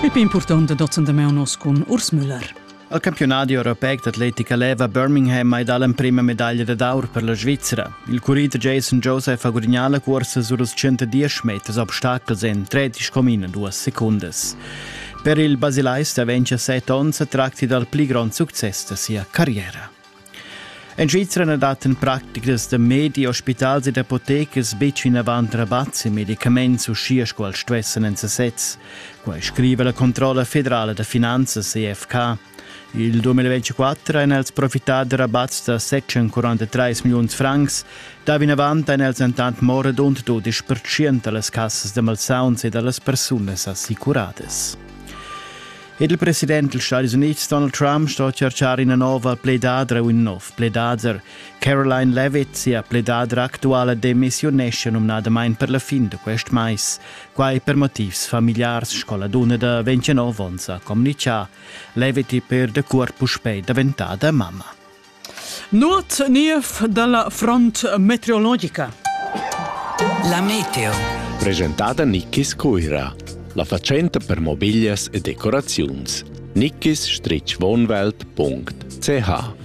Pipi impurtant da dazendameu nos cun Urs Müller. Al campionadi europeic d'atletica leva Birmingham mai dà l'emprima medaglia dad aur per la Svizzera. Il currit Jason Joseph ha gudagnà la cursa sur els 110 meters obstacles en 13,2 secundas. Per il basilais da 27 onns tracti dal pli grond success da sia carriera. En Svizra na dat en practicas da medi, ospitals ed apotecas betg vinavant rabats e medicaments uschia sco els stuessan en sasez. Quai scriva la Controlla federala da finanzas EFK. Il 2024 han els profittà da rabats da 743 milliuns francs. Da vinavant han els entant mo radund 12% da las cassas da malsauns e da las persunas assicuradas. Il president dils Stadis Units Donald Trump sto cercar ina nova pledadra u in nov pledader. Caroline Levitt, sia pledadra actuala, demissiunesce numnadamain per la fin da quest mais. Quai per motivs familiars, sco la dunna da 29 onns ha communichà. Levitt è per da curt puspè daventada mamma. Nuot niev dalla front meteorologica. La meteo. Presentada Nickis Cuira. La facenta per mobiglias e decoraziuns. nickis-wohnwelt.ch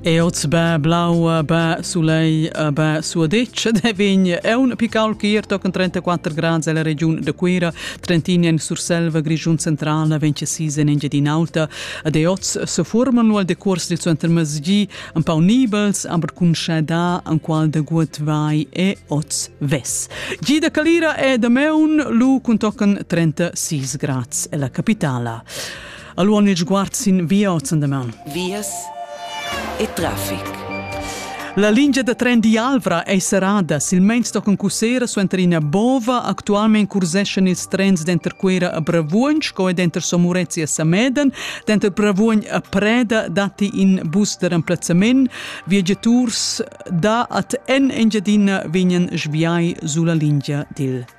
E oz bä blau, bä sulei, bä suadetsch de vin e un pical chier tochen 34 grad ella regiun de Cuira, Trentin en Surselva, Grischun centrala, 26 en Engiadin'Alta, Ed e oz seforman lu al decurs dil suentermezgi empau nibels, aber cun schada enqual da gut vai e oz ves. Gi da Calira e da Meun lu cun tocan 36 grads e la capitala. Allora il sguard sin via oz an da Meun. Vias e traffic. La lingia da tren d'Ialvra ei serrada, silmeins tochen cussera suenter ina bova. Actualmein curseschan ils trens denter Cuera a Bravuogn sco e denter Somurezia e Sameden. Denter Bravuogn a Preda datti in bus da remplazzament. Viagiaturs da ad en Engiadina vegnan sviai sulla lingia dil